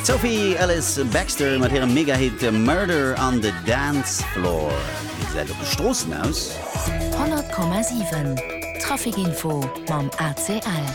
Sophie Ellis Baxter mat hirem Megahit Murder on the Dance Floor. Wéi gesäit et op de Stroossen aus? 100,7 Trafikinfo mam ACL.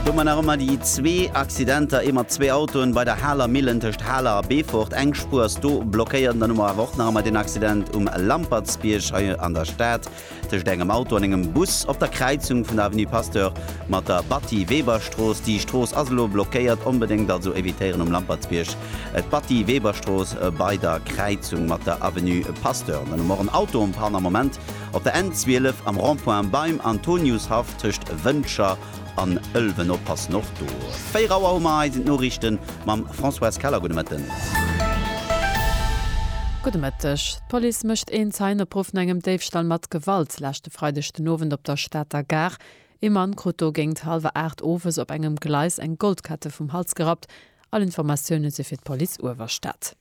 Do man nach ëmmer déi zwee Accidenter, ee mat zwee Autoen bei der Haler Millen tëscht Haler a Beefort. Eng Spuer ass do blockéiert. An dann hu mer awer och nach ëmmer den Accident um Lampertsbierg hei an der Stad. Tëscht engem Auto an engem Bus op der Kräizung vun der Avenue Pasteur mat der Batty-Weber-Strooss. Déi Strooss ass elo blockéiert, onbedéngt also evitéieren um Lampertsbierg d'Batty-Weber-Strooss bei der Kräizung mat der Avenue Pasteur. Dann hu mer och en Autoenpanne am Moment op der N12 am Rond-point beim Antoniushaff tëscht Wëncher an Ëlwen. Oppassen och do. 4 Auer hu mer, hei sinn d'Noriichte mam Françoise Keller. Gudde Mëtten. Gudde Mëtteg. D'Police mécht een Zeienopruff no engem Déifstall mat Gewalt leschte Freideg den Owend op der Stater Gare. Ee Mann krut do géingt hallwer 8 owes op engem Gleis eng Goldkette vum Hals gerappt. All Informatioune si fir d'Police Uewerstad.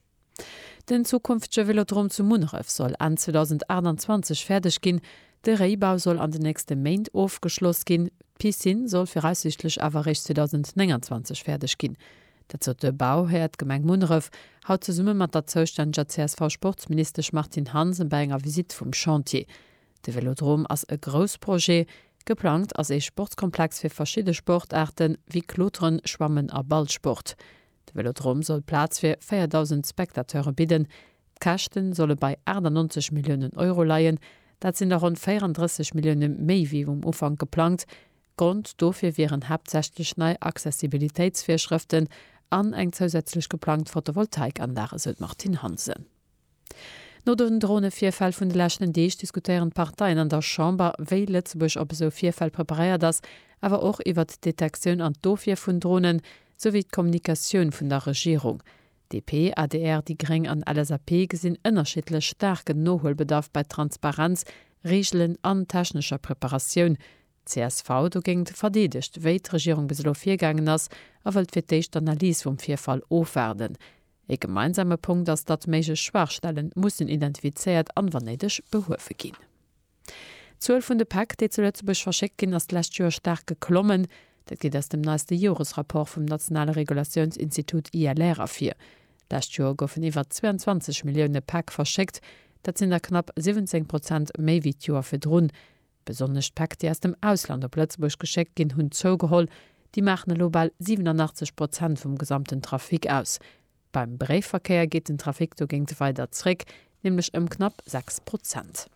Den zukünftege Velodrom zu Munneref soll Enn 2028 fäerdeg ginn. De Réibau soll an den nächste Méint ofgeschloss ginn. D'Piscine soll viraussiichtlech awer eréischt 2029 fäerdeg ginn. Dat sot de Bauhär, d'Gemeng Munneref, haut zesumme mat der zoustänneger CSV-Sportsministesch Martine Hansen bei enger Visitt vum Chantier. De Vélodrom ass e grouss Projet. Geplangt ass ee Sportskomplex fir verschidde Sportaarte wéi Kloteren, Schwammen a Ballsport. De Vélodrom soll Plaz fir 4.000 Spectateure bidden. D'Käschte solle bei 98 Milliounen Euro leien. Dat sinn der ronn 34 Millioune méi wéi um Ufank geplangt. Grond dofir wieren haaptsächlech nei Accessibilitéitsvirschrëften an eng zousätzlech geplangt Photovoltaikanlag, esou d'Martine Hansen. No den Dronevirfäll vun de leschten Deeg diskutéieren d'Parteien an der Chamber, wéi Lëtzebuerg op esou Virfäll preparéiert ass, awer och iwwert d'Detektioun an d'Ofwier vun Dronen, souwéi d'Kommunikatioun vun der Regierung. DP, adr, déi gréng an LSAP gesinn ënnerschiddlech staarken Nohuelbedarf bei Transparenz, Reegelen an technescher Preparatioun, csv dogéint verdeedegt, wéi d'Regierung bis elo virgaangen ass a wëllt fir d'éischt d'Analys vum Virfall ofwaarden. Ee gemeinsame Punkt ass, datt méiglech Schwaachstellen mussen identifizéiert an, wann néideg, behuewe ginn. D'Zuel vun de Päck, déi zu Lëtzebuerg verschéckt ginn, ass d'lescht Joer staark geklommen. Dat geet aus dem neiste Joresrapport vum nationale Regulatiounsinstitut ILR ervir. D'lescht Joer goufen iwwer 22 Millioune Päck verschéckt. Dat sinn der knapp 17 Prozent méi wéi d'Joer virdrun. Besonnesch d'Päck, déi aus dem Ausland op Lëtzebuerg geschéckt ginn, hunn zougeholl. Déi maachen elo bal 87 Prozent vum gesamten Trafic aus. Beim Bréifverkéier geet den Trafic dogéint weider zréck, nämlech ëm knapp 6 Prozent.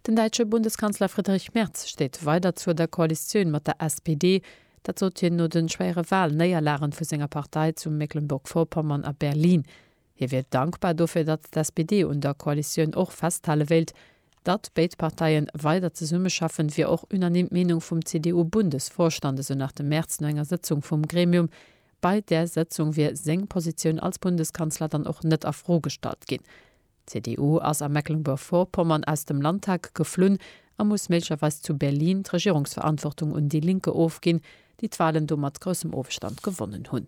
Den däitsche Bundeskanzler Friedrich Merz steet weider zur der Koalitioun mat der SPD. Dat sot hien no de schwéiere Walnéierlagen vu senger Partei zu Mecklenburg-Vorpommern a Berlin. Hie wier dankbar dofir, datt d'SPD un der Koalitioun och festhale wéilt. Datt béid Parteie weider zesummeschaffen, wier och unanime d'Meenung vum CDU-Bundesvorstand, esou nach de Merz no enger Sëtzung vum Gremium. Bei där Sëtzung wier seng Positioun als Bundeskanzler dann och net a Fro gestallt ginn. D'CDU ass a Mecklenburg-Vorpommern aus dem Landtag geflunn a muss méiglecherweis zu Berlin d'Regierungsverantwortung un Die Linke ofginn, déi d'Walen do mat groussem Ofstand gewonnen hunn.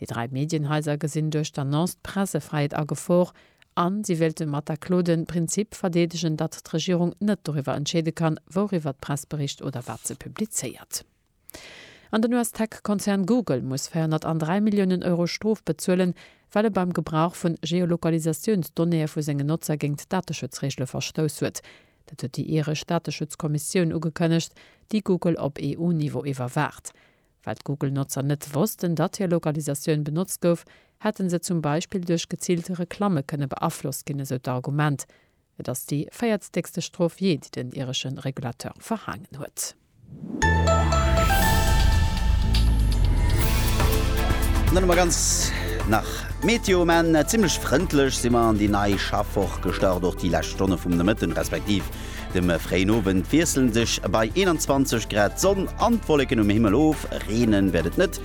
Déi dräi Medienhaiser gesinn duerch d'Annonce d'Pressefräiheet a Gefor an si wéilte mat der Klo den Prinzip verdeedegen, datt d'Regierung net doriwwer entscheede kann, wouriwwer d'Press bericht oder wat se publizéiert. An den US-Tech-Konzern Google muss 403 Milliounen Euro Strof bezuelen, well e beim Gebrauch vu Geolokalisatiounsdonnéeë vu sengen Notzer géint d'Dateschutzreegele verstouss huet. Dat huet déi iresch Dateschutzkommissioun ugekënnegt, déi Google op EU-Niveau iwwerwaacht. Well d'Google-Notzer net wossten, datt hir Lokalisatioun benotzt gouf, hätte se zum Beispill duerch geziilt Reklamme kënne beaflosst ginn, esou d'Argument. Et ass déi véiertstäkste Strof jee, déi den iresche Regulateur verhaangen huet. An dann hu mer ganz nach Meteo um Enn. Zimmlech frëndlech si mer an déi nei Schaffwoch gestart. Och déi lescht Stonne vum Nomëtten, respektiv De fréien Owend wiesselen sech bei 21 Grad d'Sonn an d'Wolleken um Himmel of, reene wäert et net,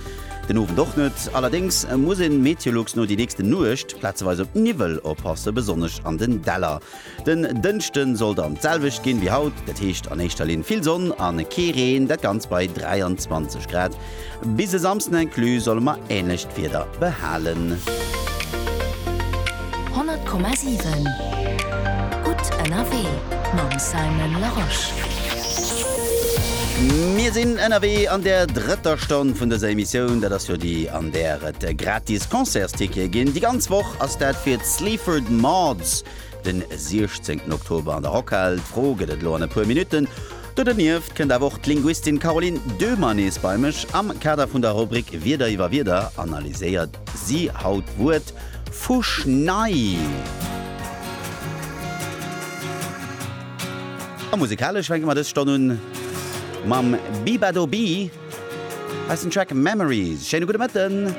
den Owend och net. Allerdéngs muss een Meteolux no déi nächste Nuecht plazeweis op Niwwel oppassen, besonnesch an den Däller. Den Dënschde soll dann d'selwecht ginn wéi haut, dat heescht an éischter Linn vill Sonn an kee Reen, dat Ganzt bei 23 Grad. Bis e Samsden inclus solle mer änlecht Wieder behalen. 100,7 Gutt ënnerwee mam Simon Larosche. Mir sinn ënnerwee an der drëtter Stonn vun dëser Emissioun. Dat ass jo déi, an där et gratis Concertstickete ginn. Déi ganz Woch ass dat fir d'Sleaford Mods den 16 Oktober an der Rockhal. D'Fro, Gëtt et elo an e puer Minutten Do dernieft kënnt awer och d'Linguistin Caroline Döhmer nees bei mech. Am Kader vun der Rubrik Wierder iwwer Wierder analyséiert si haut d'Wuert Fuschnei. A musekalesch fänke mer dës Stonn un mam Bibado Bi. Hei ass den Track Memories. Schéine gudde Mëtten.